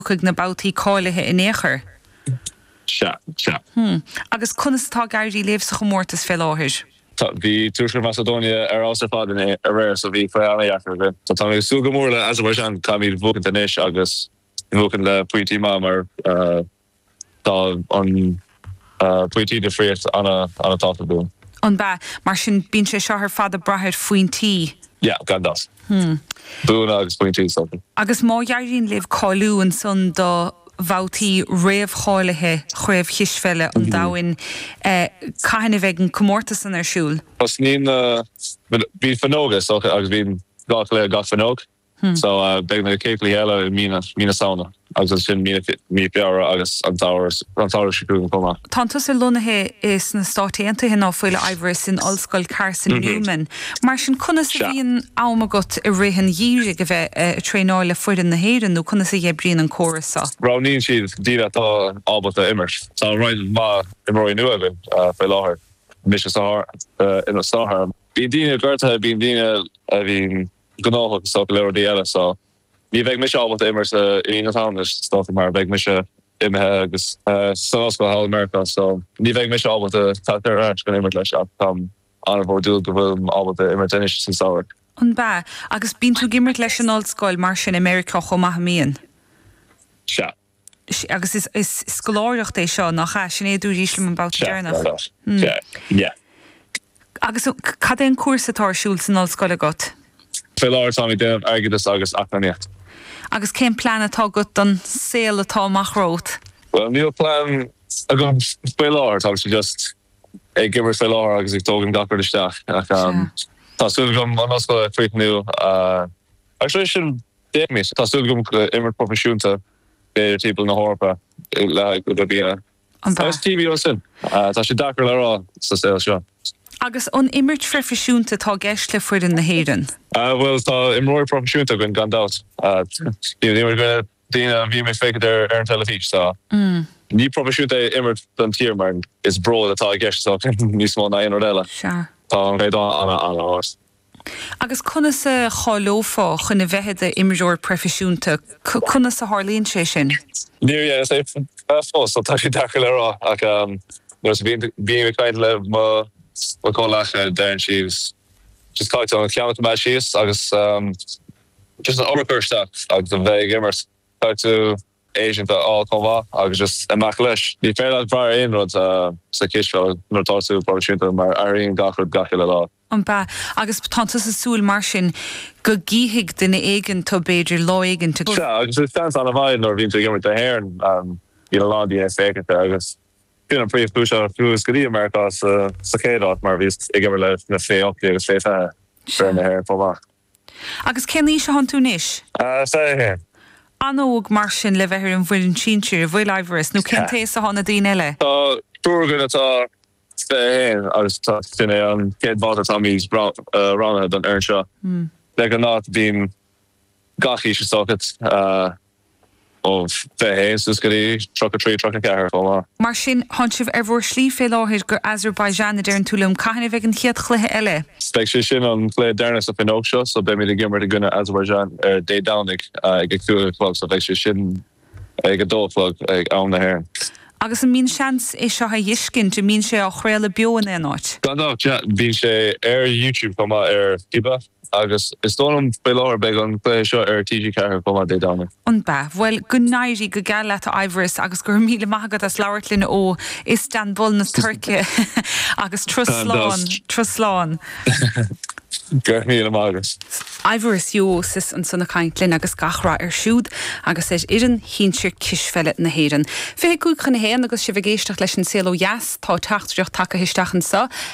chuig na babhtaí cáilithe in aon chor? Sea, sea. Hmm. Agus conas atá ag éirí libh sa chomórtas fé láthair? Sea, bhí Tuaisceart Macadóine ar fheabhas ar fad inné aréir so bhí fadhb an-dheacair againn. Tá mé ag súil go mór le Azerbaijan, caithfimid bhuacaint anois agus bhuacaint le pointí maithe mar. Tá an pointí difríocht ana-thábhachtach. An b'ea? Mar sin bíonn sé seo ar fad ag braith ar phointí? Yeah, gan dabht. Buanna agus pointí, is dócha. Agus má éiríonn libh cáiliú ansan do bhabhtaí réamhcháilithe Chraobh Chispheile an Domhain, cathain a bheidh an comórtas san ar siúl? Tosnaíonn na, bhíonn fuinneoga, is dócha, agus bíonn dhá chluiche gach fuinneog. So, beidh na cluichí eile i mí na, mí na Samhna agus ansin mí na, mí Feabhra agus an samhradh, an samhradh seo chugainn chomh maith. Tánn tusa lonnaithe i, sna Stáit Aontaithe nach bhfuil, a Aibhistín, san Ollscoil Carson Newman. Mar sin, conas a bhíonn am agat i rith an gheimhridh a bheith a, a traenáil le foireann na hÉireann nó conas a dh'oibríonn an córas seo? Roghnaíonn siad daoine atá ábalta imirt. Tá roinnt mhaith imreoirí nua againn faoi láthair, mise san, ina, san áireamh. Bíonn daoine gortaithe, bíonn daoine a bhíonn. gnóthach is dócha le rudaí eile so ní bheidh mise ábalta imirt i mí na Samhna is dócha mar beidh mise imithe agus san ollscoil thall i Meiriceá so ní bheidh mise ábalta teacht ar ais chun imirt leo ach táim an-bhródúil go bhfuilim ábalta imirt anois san samhradh. An b'ea? Agus bíonn tú ag imirt leis an ollscoil mar sin i Meiriceá chomh maith, an mbíonn? Sea. Agus is scoláireacht é seo, nach ea? Sin é a dúraís liom an babhta deireanach. Sea, sea, sea, yeah. Agus cad é an cúrsa atá ar siúl san ollscoil agat? Fé láthair táim ag déanamh airgeadas agus eacnamaíocht. Agus cén plean atá agat don saol atá amach romhat? Bhuel, níl plean agam faoi láthair, táimse just ag imirt fé láthair agus ag tógaint gach rud isteach. Ach tá súil agam an ollscoil a chríochnú agus tar éis sin, Féachaimis. Tá súil agam imirt proifisiúnta timpeall na hEorpa le haghaidh cúpla bliana. An b'ea. Agus taobh amuigh sin, tá sé deacair le rá sa saol seo. Agus an imirt phroifisiúnta atá i gceist le foireann na hÉireann? Bhuel, tá imreoirí proifisiúnta againn gan dabht. Níl aon rud faoi dhaoine a bhíonn ag féachaint ar an teilifís, tá. Ní proifisiúnta é imirt don tír mar is bród atá i gceist níos mó ná aon rud eile. Tá an caighdeán ana-ard. Agus conas a cháileofá chun a bheith i d'imreoir proifisiúnta? Conas a tharlaíonn sé sin? Níor dheineas é fós, tá sé deacair le rá, ach nuair a bhím ag caint le mo chomhleacaithe deireann siad just caithfidh tú an ceann a choimeád síos agus just an obair a chur isteach agus a bheith ag imirt. Caithfidh tú. séasúr a fháil chomh maith agus just imeacht leis. Ní féidir leat brath ar aon rud sa chispheil nuair atá tú proifisiúnta mar athraíonn gach rud gach uile lá. An ea. Agus tá tusa ag súil mar sin go gcífidh duine éigin tu b'fhéidir lá éigin. Sea, agus is seans an-mhaith nuair a bhíonn tú ag imirt do Éirinn, bíonn a lán daoine ag féachaint air agus b'in an príomhchúis a chuas go dtí Meiriceá sa chéad áit mar bhíos ag imirt leis na fé hocht déag agus fé fiche d'fhoireann na hÉireann chomh maith. Agus cén aois a thánn tú anois? Fiche a haon. An-óg mar sin le bheith ar an bhfoireann sinsir an bhfuil a Aindreas, nó cén t-aois a thánn na daoine eile? Tá triúr againn atá fiche a haon agus sin é an chéad bhabhta táimid roghnaithe don fhoireann seo. Le go bhfuil gach aois is dócha. ó fiche a haon suas go dtí tríocha trí, tríocha ceathair chomh maith. Mar sin, thán sibh ar bhur slí fé láthair go Azerbaijan, a deireann tú liom. Cathain a bheidh an chéad chluiche eile? Beidh sé sin an cluiche deireanach sa fhuinneog seo, so beimid ag imirt i gcoinne Azerbaijan ar Dé Domhnaigh ag a cúig a chlog, so beidh sé sin ag a dó a chlog ag am na hÉireann. Agus an mbíonn seans é seo a dh'fheiscint, an mbíonn sé á chraoladh beo in aon áit? Gan dabht, yeah. Bíonn sé ar YouTube chomh maith, ar FIBA. Agus is dóigh liom faoi láthair beidh an cluiche seo ar TG4 chomh maith Dé Domhnaigh. An mbeidh? Bhuel, go n-éirí go geal leat a Aindreas agus go raibh míle maith agat as labhairt linn ó Istanbul na Tuirce agus turas slán, turas slán. Go raibh míle maith agat. Aindreas Jó Síos ansan ag caint linn agus gach rath air siúd agus ar fhoireann shinsir cispheile na hÉireann. Fiche cúig chun a haon agus sibh ag éisteacht leis An Saol Ó Dheas, tá teachtaireacht tagaithe isteach anseo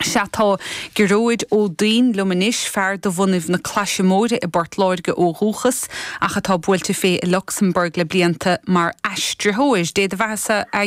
Sea, tá Gearóid Ó Duinn liom anois, fear de bhunadh na Claise Móire i bPort Láirge ó dhúchas, ach atá buailte fé i Lucsamburg le blianta mar aistritheoir. Dé do bheathasa, a.